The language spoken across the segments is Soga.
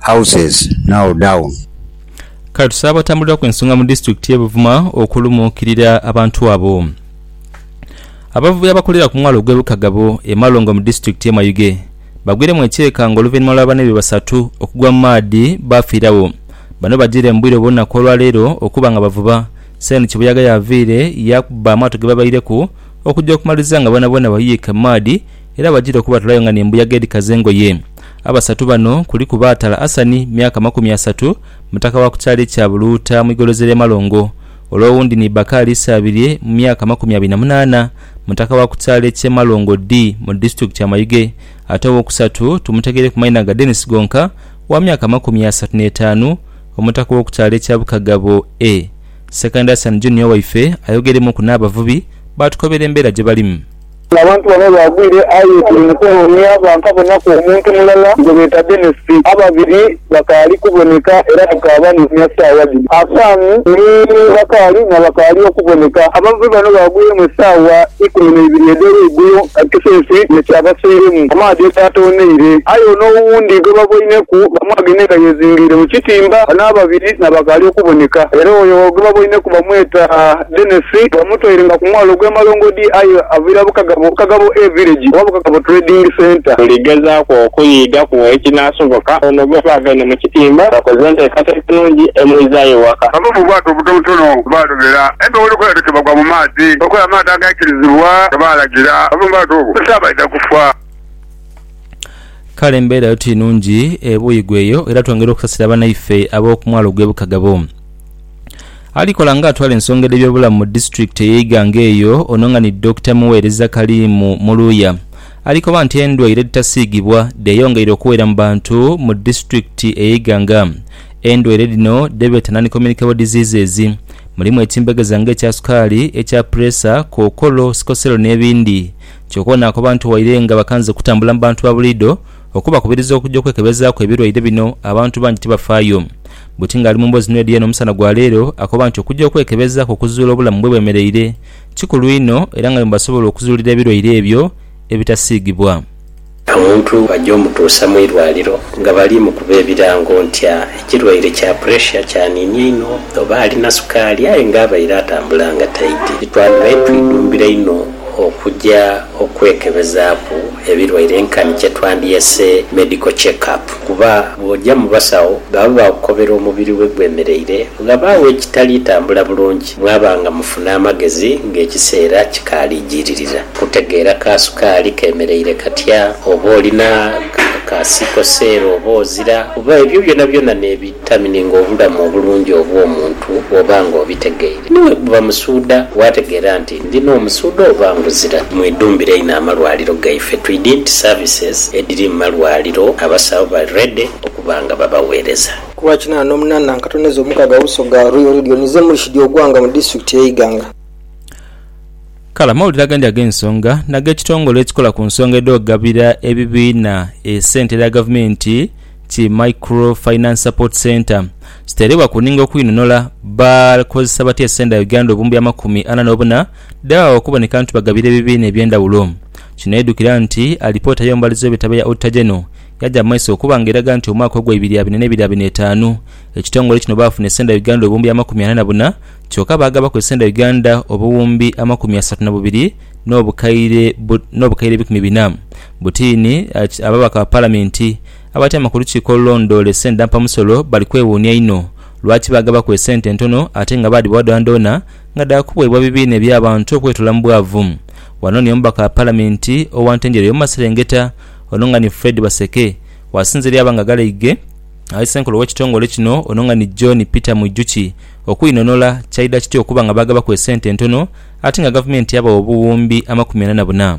houses now down. Kale tusabe abatambuliraku ensonga mu disitulikiti ye Buvuma okulumuukirira abantu abo. Abavubi abakolera ku mwalo ogwe Bukagabo e Malongo mu disitulikiti ye Mayuge bagwiremu ekyeeka nga oluvainhuma lwa banaibwe basatu okugwa mu maadhi baafiiragho. Bano bajiire mu bwire obw'olunaku olwa leero okuba nga bavuba, Seeni Kibuyaga y'aviire yaakubba amaato gebabaireku okugya okumaliriza nga boonaboona bayiika mu maadhi, era bajira okubatolayo nga n'embuyaga edhikaza engoye. Abasatu bano kuliku Baatala Asani, myaka makumi asatu, mutaka wa ku kyalo ekya Buluuta mu igolozi ly'e Malongo. Ole owundi ni Bakaali Isaabirye, mu myaka makumi abiri na munaana, mutaka wa ku kyalo eky'e Malongo Dii mu disitulikiti ya Mayuge. Ate ow'okusatu tumutegeire ku maina ga Denis Gonka, wa myaka makumi asatu n'etaanu, omutaka w'oku kyalo ekya Bukagabo A. Sekandi Asani Junior waife ayogeremuuku n'abavubi baatukobera embeera gye balimu. Abantu bano baagwire aye tuli mu kunoonia bankabonaku omuntu mulala gwe beeta Denis. Ababiri bakaali kuboneka era tukaabanoonia saawa dhino. Hassan ni Bakali na bakaali okuboneka. Abavubi bano baagwiremu esaawa ikumi na ibiri edh'olweigulo nga kisense ye kyabasoiremu amaadhi egaatooneire. Aye ono owundi gwe baboineku bamwagenhe nga yeezingiire mu kitimba. Bano ababiri na bakaali okuboneka era oyo gwe baboineku bamweta Dennis bamutoire nga ku mwalo ogw'e Malongodi aye aviira Bukagabo, Bukagabo A Village oba Bukagabo Trading Centre. Buli gezaaku okuyiigaku ekinaasoboka ono gwe baaganhe mu kitimba bakoze nteekateeka nnungi emwizaayo ewaka. Bava mu bwato obutonotono baalobera empewo lukwe ate kebagwa mu maadhi okola amaadhi agaikirizibwa nga baalagira bave mu bwato obwo nti abaidha kufa. Kale embeera yo ti nnungi e Buigwe eyo era twongera okusasira banaife ab'oku mwalo gw'e Bukagabo. Ali kola nga atwala ensonga edhe byobulamu mu disitulikiti eye Iganga eyo ono nga ni Dokita Mughereza Kaliimu Muluya alikoba nti endwaire edhitasiigibwa dheyongeire okuwera mu bantu mu disitulikiti eye Iganga. Endwaire dhino dhebeeta non communicable diseases mulimu ekimbegeza nga ekya sukaali, ekya puleesa, kookolo, sikoselo n'ebindi kyoka ono akoba nti waire nga bakanze kutambula mu bantu babuliido, Okubakubiriza okuja okwekebezaaku ebirwaire bino abantu bangi tibafaayo. Buti ng'ali mu mboozi n'Eddie eno omusana gwa leero, akoba nti okuja okwekebezaaku okuzuula obulamu bwe bwemereire kikulu inho era nga mwebasobola okuzuulira ebirwaire ebyo ebitasiigibwa. Omuntu bajja omutuusa mu irwaliro nga bali mukuba ebirango nti ekirwaire kya puresha kyaniinia inho oba alina sukaali aye nga abaire atambula nga taidhi. Titwandibaire twidhumbira inho okuja Okwekebezaaku ebilwaire nkani kyetwandyese medical check up kuba bw'oja mu basawo baba baakukobera omubiri we gwemereire, ghabagho ekitali tambula bulungi mwaba nga mufuna amagezi ng'ekiseera kikaali jiiririra kutegeera ka sukaali kemereire katya, oba olina ka siikoseero oba ozira kuba ebyo byonabyona n'ebi. Tamininga obulamu obulungi obw'omuntu bw'oba ng'obitegeire. Ni bwe buba musuudha, waategeera nti ndi n'omusuudha oba nguzira. Mwidhumbire inho amalwaliro gaife. Twidhi nti services edhiri mu malwaliro abasawo bali ready okuba nga babaweereza. Ku lwa kinana n'omunana nkatoneza omukaga Uso ga Royal Radio nize Murshid Ogwanga mu District ye Iganga. Kale amawulire agandi ag'ensonga n'ag'ekitongole ekikola ku nsonga edh'okugabira ebibiina esente edha gavumenti, ki Micro Finance Support Centre kiterebwa ku ninga okwinonhola bakozesa batya esenda Uganda obumbi amakumi ana nobuna dhebagha okuboneka nti bagabira ebibiina ebyendhawulo. Kino edhukira nti alipoota y'omubalizi w'ebitabo eya Auditor General yaja mu maiso okuba nga eraga nti omwaka ogwa ibiri abiri n'ebiri abiri n'etaanu ekitongole kino baafuna esenda Uganda obumbi amakumi ana nabuna kyoka baagabaku esenda Uganda obuwumbi amakumi asatu nabubiri n'obukaire n'obukaire ebikumi bina. Butiini, Ababaka ba Palamenti abatyaama ku lukiiko olulondoora esente dha mpamusolo bali kwewuunia inho lwaki baagabaku esente entono ate nga baadhibawa dhoonadhoona nga dhaakubweebwa ebibiina eby'abantu okwetoola mu bwavu. Ghano ni omubaka wa Palamenti owa Ntenjeru ey'omumaserengeta ono nga ni Fred Baseke waasinziira yaaba nga agalaighe aghali ssenkulu ow'ekitongole kino ono nga ni John Peter Mwijukye okweinhonhola kyaidha kitya okuba nga baagabaku esente entono ate nga gavumenti yabawa obuwumbi amakumi ana na buna.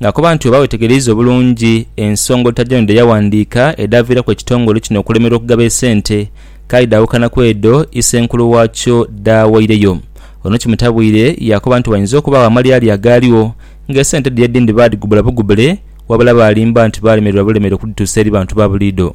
Nga akoba nti oba wetegereiza obulungi ensonga Otajano dhe yawandiika edhaaviiraku ekitongole kino okulemerwa okugaba esente, kaali dhaawukana ku edho isenkulu waakyo dhaawaireyo. Ono kimutabwire yaakoba nti wainza okubaagho amalyalya agaaligho nga esente dhiri edhindi baadhigubula bugubule wabula baalimba nti baalemererwa bulemere okudhituusa eri bantu ba buliidho.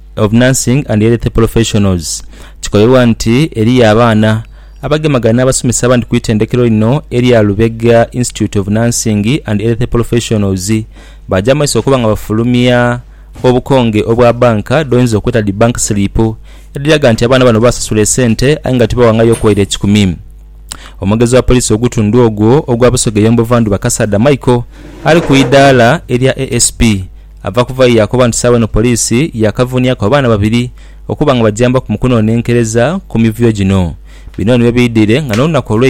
of Nursing and Health Professionals kikolerwa nti eriyo abaana abagemagana n'abasomesa abandi ku itendekero lino erya Lubega Institute of Nursing and Health Professionals baaja mu maiso okuba nga bafulumya obukonge obwa banka dhoyinza okweta dhi bank slip edhiraga nti abaana bano baasasula esente aye nga tibawangayo okuwaire ekikumi. Omwogezi wa poliisi oghutundu ogwo ogwa Busoga Eyombo Vandhuba Kasaadha Michael ali ku idaala erya ASP Ava kuvayo yaakoba nti saagho eno poliisi yaakavuniaku abaana babiri okuba nga bajambaku mu kunonenkereza ku mivuyo gino. Bino nibyo biidhire nga n'olunaku olw'e.